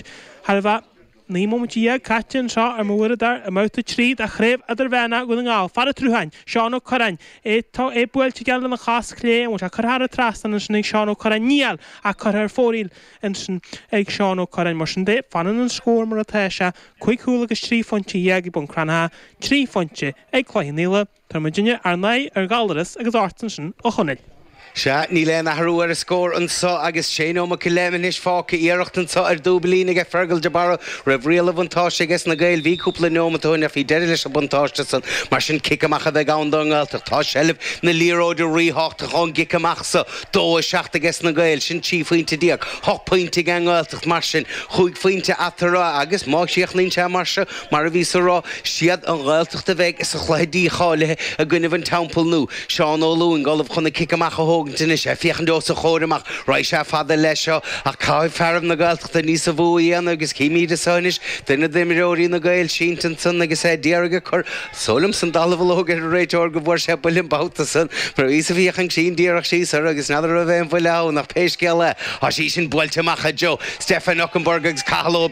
thar a bheith. Naoi móimint dhéag caite anseo ar mo uaireadóir i mbabhta trí de Chraobh Idirmheánach Dhún na nGall. Fear an tSrutháin, Seán Ó Cuirreáin, é buailte aige lena chos chlé. An bhfuil sé curtha thar an trasnán ansin ag Seán Ó Cuirreáin? Níl, ach curtha ar fóraoil ansin ag Seán Ó Cuirreáin. Mar sin de, fanann an scór mar atá sé, cúig chúl agus trí phointe dhéag ag Bun Cranncha, trí phointe ag Cloich Cheann Fhaola. Tabharfaidh muidinne ár n-aghaidh ar Ghallaras agus ortsa ansin, a Chonaill. Sea, níl aon athrú ar an scór anseo agus sé neomat go leith anois fágtha. Iarracht anseo ar dúiblín aige Fergal de Barra raibh riail an bhuntáiste aige sna Gaeil. Bhí cúpla neomat ó shin ach bhí deireadh leis an buntáiste san. Mar sin cic amach a bheidh ann don nGaeltacht. Tá seilbh na liathróide ríthábhachtach ón gcic amach so. Dó a seacht aige sna Gaeil. Sin trí phointe déag. Hocht pointe aige an Ghaeltacht mar sin. Chúig phointe eatarthu agus má chríochnaíonn sé mar seo, mar a bhíos ag rá, 'Siad an Ghaeltacht a bheidh sa chluiche dícháilithe i gcoinnibh an Teampaill Nua'. Seán Ó Lúing ullamh chun an cic amach a thógaint anois, ag féachaint os a chomhair amach, raghaidh sé fada leis seo, ach caithfidh fearaibh na Gaeltachta níosa mhó a dhéanamh agus chímíd anso anois duine d'imreoirí na Gaeil sínte ansan agus é a d'iarraidh a chur is dóigh liomsa an dallamhullóg ar an réiteoir go bhfuair sé buille an babhta san mar bhíos ag féachaint cruinn díreach síos air agus n'fheadar an raibh aon bhuille ann ach pé scéal é thá sí sin buailte amach i dtreo Stefan Okunbor agus Cathal Ó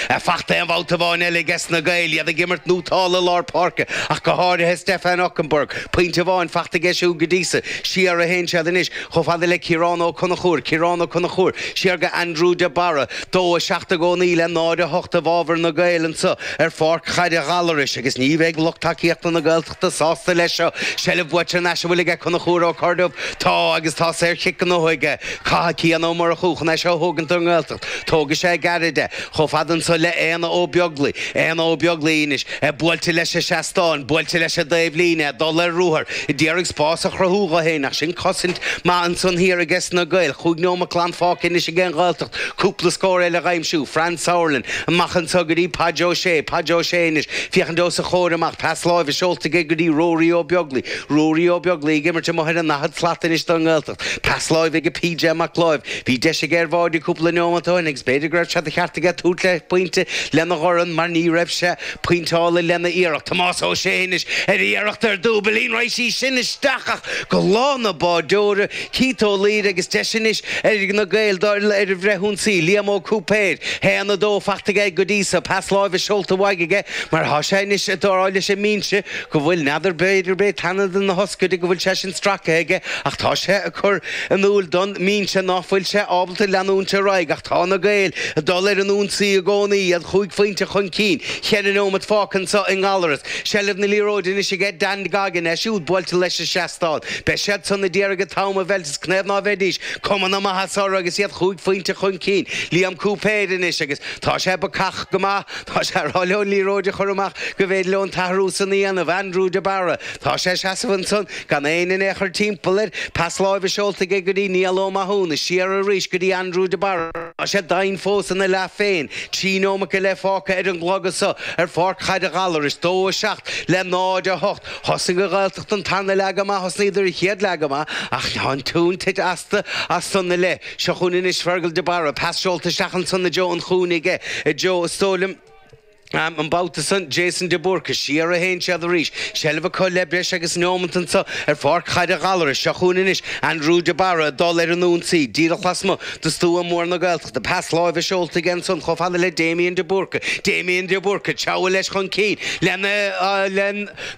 Ar fachta aon bhabhta amháin eile aige sna Gaeil, iad ag imirt nótálta i lár páirce, ach go háirithe Stefan Okunbor. Pointe amháin fachta aige siúd go dtí so, siar a théann siad anois, chomh fada le Ciarán Ó Conchúir, Ciarán Ó Conchúir, siar go Andrew de Barra, dó 7 i gcónaí le 0, 8 i bhfabhar na Gaeil anseo ar pháirc Chaide Ghallarais agus ní bheidh lucht tacaíochta na sásta leis seo. Seilbh buaite thar n-ais an bhfuil aige Conchúr Ó Corrduibh. Tá agus tá saor chic gnóthaithe aige. Caithfidh Cian Ó Murchú chun é seo a thógaint don nGaeltacht. Tógfaidh sé gairid é. Chomh fada anso le Aodhna Ó Beaglaoich. Aodhna Ó Beaglaoich anois. É buailte leis an seastán. Buailte leis an dtaobh líne. Ag dul ar ruathar. Ag d'iarraidh spás a chruthú dho féin. Ach sin cosaint maith ansan thiar ages na Gaeil. Chúig neomat glan fágtha anois aige an Ghaeltacht. Cúpla scór eile dh'aimsiú. Franz Sauerland. Amach anso go dtí Páid Ó Sé, Páid Ó Sé anois, féachaint os a chomhair amach, pas láimhe seolta aige go dtí Ruairí Ó Beaglaoich, Ruairí Ó Beaglaoich ag imirt amuigh ar an ndaichead slat anois don nGaeltacht, pas láimhe go PJ Mac Láimh, bhí deis aige ar bháide cúpla neomat ó shin agus b'fhéidir go raibh sé de cheart aige tabhairt le pointe lena dhorn mar ní raibh sé pointeálta lena iarracht, Tomás Ó Sé anois ar iarracht ar dhúiblín, raghaidh sí sin isteach ach go lámha an bháideora, Keith Ó Laoire agus deis anois ag na Gaeil dul ar an bhfrithionsaí, Liam Ó Cúipéir, 1, 2, fachta aige go dtí so, pas láimhe seolta uaidh aige mar atá sé anois ag rá leis an mbinse go bhfuil n'fheadar b'fhéidir b'é teannán na hioscaide go bhfuil sé sin stractha aige ach tá sé ag cur in iúil don mbinse ná fuil sé ábalta leanúint ar aghaidh ach tá na Gaeil ag dul ar an ionsaí i gcónaí, iad chúig phointe chun cinn, cheithre neomat fágtha anseo i nGallaras. Seilbh na liathróide anois aige Dan Goggin, é siúd buailte leis an seastán. Beidh siad san a d'iarraidh an t-am a mheilt is canathaobh ná beidís cuma na maitheasa orthu agus iad chúig phointe chun cinn. Liam Cúipéir anois agus tá sé bacach go maith. Tá sé ag rá leo an liathróid a chur amach go bhféidir leo an t-athrú san a dhéanamh. Aindriú de Barra, tá sé ag seasamh ansan gan éinne in aon chor timpeall air. Pas láimhe seolta aige go dtí Niall Ó Mathúna is siar arís go dtí Aindriú de Barra. Tá sé doimhin fós ina leath féin. Trí nóimeat go leith fágtha ar an gclog anseo ar Pháirc Chaide Ghallarais. 2-7 le 0-8. Thosnaigh an Ghaeltacht an tarna leath go maith, thosnaíodar an chéad leath go maith ach tá an tóin tite astu as san i leith. Seo chugainn anois Fergal de Barra, pas seolta isteach ansan do Joe, an cúinne aige ag Joe is dóigh liom, an babhta san Jason de Búrca. Siar a théann siad arís, seilbh acu le breis agus neomant anso ar pháirc Chaide Ghallarais. Seo chugainn anois Aindriú de Barra ag dul ar an ionsaí, díreach lasmuigh. de stua mór na Gaeltachta, pas láimhe seolta aige ansan chomh fada le Damien de Búrca, Damian de Búrca, treabhadh leis chun cinn, le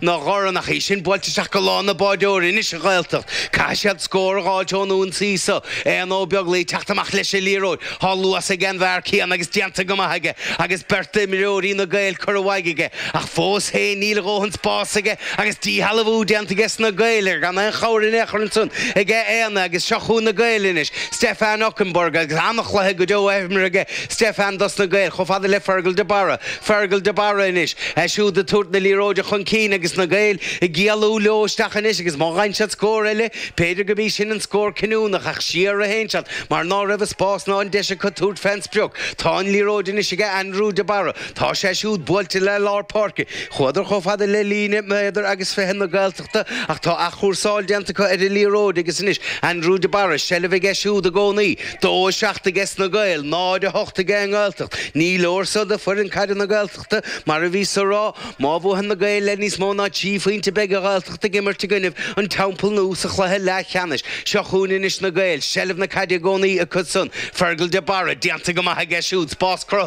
na Gormanachaí sin buailte isteach go Lána na Báideoiri anois, an Ghaeltacht, caithfidh siad scór a dh'fháilt ón ionsaí so, Aodhna Ó Beaglaoi ag teacht amach leis an liathróid, tá luas aige an bhfear céanna agus déanta go maith aige agus beirt d'imreoirí na Gaeil curtha amú aige, ach fós féin níl a dhóthain spáis aige agus díshealbhú déanta aige sna Gaeil air gan aon chabhair in aon chor ansan aige Aodhna agus seo chugainn na Gaeil anois. Stefan Okunbor agus an-chluiche go deo á imirt ag Stefan dos na Gaeil chomh fada le Fergal de Barra. Fergal de Barra anois, é siúd ag tabhairt na liathróide chun cinn agus na Gaeil ag éalú leo isteach anois agus má gheibheann siad scór eile, b'fhéidir gurb í sin an scór cinniúnach ach siar a théann siad mar ná raibh an spás ná an deis acu tabhairt fé an sprioc. Tá an liathróid anois aige Andrew de Barra. Tá sé siúd buailte le lár páirce. Chuadar chomh fada le líne méadar agus fiche na Gaelta. ach tá athchúrsáil déanta acu ar an liathróid agus anois Andrew de Barra, seilbh aige siúd i gcónaí. Dó a seacht aige sna Gaeil, 0, 8 aige an nGaeltacht. Ní leor seo do foireann caide na Gaeltachta, mar a bhíos a rá. Má bhuaitheann na Gaeil le níos mó ná trí phointe beidh an Ghaeltacht ag imirt i gcoinnibh an Teampaill Nua sa chluiche leathcheannais. Seo chugainn anois na Gaeil, seilbh na caide i gcónaí acu san. Fergal de Barra, déanta go maith aige siúd, spás cruthaithe.